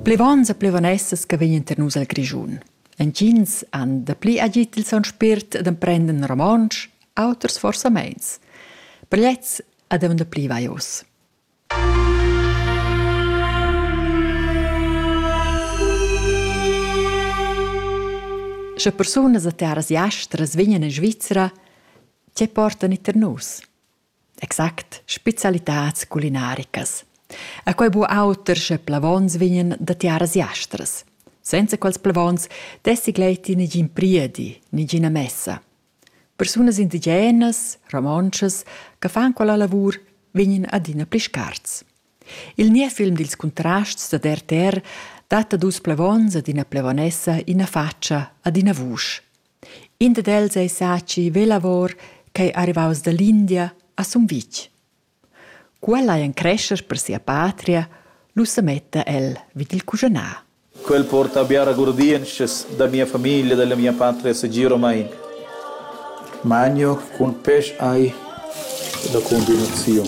Plevon e plevon essas che vegnan tar nus al Grischun. Entgins han dapli agit il son spirt d'emprender romontsch, auters forsa meins. Plets ad avon dapli vaios. Sche persunas a terras jastras vegnan in Svizzera, tge portan i tar nus? Exact, specialitads culinaricas. E quei bu auter sche plevons vegnan da tiaras jastras. Senza quels plevons dessi gleiti negin priedi, negina messa. Persunas indigenas, romontschas, che fan quella lavur vegnan adina pli scarts. Il niev film dils Contrasts da RTR dat a dus plevons ad ina plevonessa ina faccia ad ina vusch. In dad els ei Saci Velavor ch'ei arrivaus dall'India a Sumvitg. Cu el ei en crescher per sia patria, lu semetta el vid il cuschanar. Quel porta biara gurdientschas da mia famiglia, dalla mia patria segiromein. Magno cun pèsch ei la combinaziun.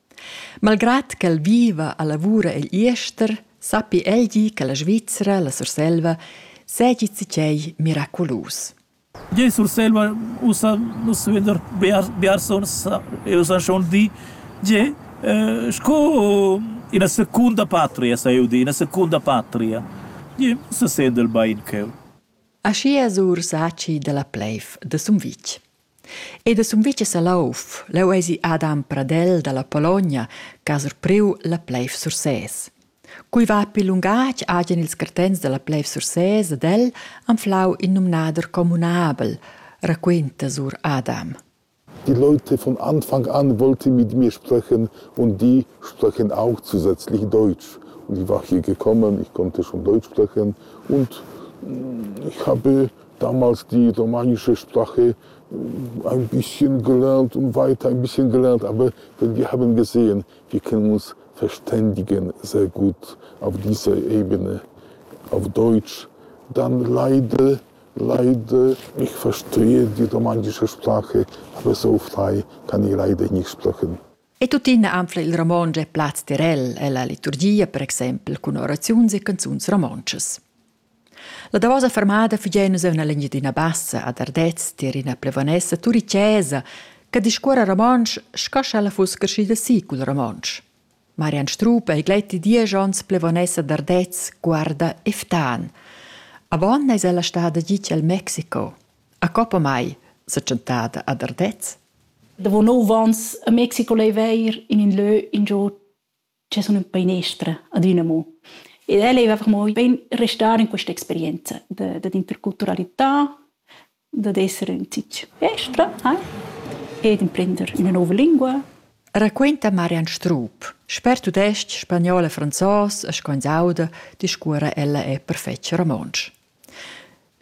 Malgrad ch'el viva e lavura egl jester, sappi el dir che la Svizra, la Surselva, seigi zatgei miraculus. Gie, in Surselva ussa nus veder biars, biars onns e ussa schon di. Gie, eh, sco ina secunda patria, sa eu dir, ina secunda patria. Gie, se sendel bein cheu. Aschia sur Saci dalla Pleif de Sumvitg. Ed a Sumvitg e Salouf, leu eisi Adam Pradel dalla Pologna che ha surpriu la pleiv Sursés. Cui va pil lungatg hagen ils cartents dalla pleiv Sursés ed el anflau in numnader communabel, raquinta sur Adam. Die Leute von Anfang an wollten mit mir sprechen und die sprechen auch zusätzlich Deutsch. Und ich war hier gekommen, ich konnte schon Deutsch sprechen und mm, ich habe damals die romanische Sprache ein bisschen gelernt und weiter ein bisschen gelernt, aber wenn wir haben gesehen, wir können uns verständigen sehr gut auf dieser Ebene, auf Deutsch. Dann leider, leider, ich verstehe die romanische Sprache, aber so frei kann ich leider nicht sprechen. E tuttina anfla il romontsch e plaz tirel e la liturgia per exempel cun oraziuns e canzuns romontschas. La davosa fermada fugia nus en l'Engiadina Bassa ad Ardez tier ina plevonessa turicesa che discuora romontsch sco sch'ella fuss creschida si cul romontsch. Marian Strup ei gleiti diesch onns plevonessa d'Ardez, guarda e ftan. Avon eis ella stada gitg al Mexico. A coppa mai, sa tschentada ad Ardez. Davo nov ans a Mexico leiva eir in ün lö ingio che sun ün einestra adüna amo. Ed el eiva amo bain restar in questa experienza da dad interculturalità, dad esser ün zich estra hai e d'imprender üna nouva lingua. Raquinta Marian Strup. Sper tudestg, spagnol e franzos e sco ins auda, discuora ella e perfetg romontsch.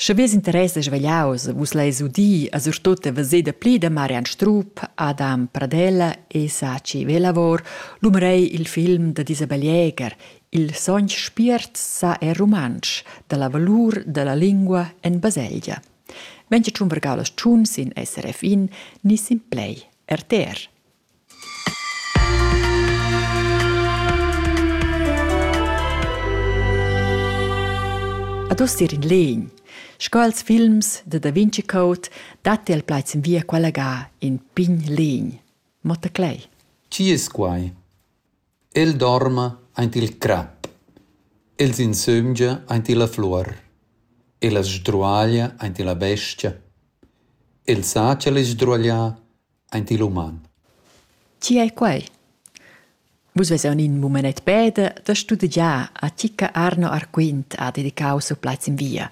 Sche Vus interessas vegliaus, vus leis udir a surtut e veser dapli da Marian Strup, Adam Pradella e Saci Velavor l'umerei il film da Isabel Jäger, Il sogn spiert sa è rumantsch, dalla valur dalla lingua en baselgia. Venga tschun vergau las tschun sin SRF in ni sin play RTR. Ad uss ir in legn. Sco als films de Da Vinci Code datti al plaids in via quella ga in pign legn. Motta Clay. Chi es quai? El dorma aint il crap. El s'insömgia aint illa fluor. El as sdruaglia aint illa bestia. El sa cha l'es sdruaglià aint il uman. Chi è quai? Vus vesan in mumenet peda da studegiar a Cicca Arno Arquint ha dedicau siu plaz in via.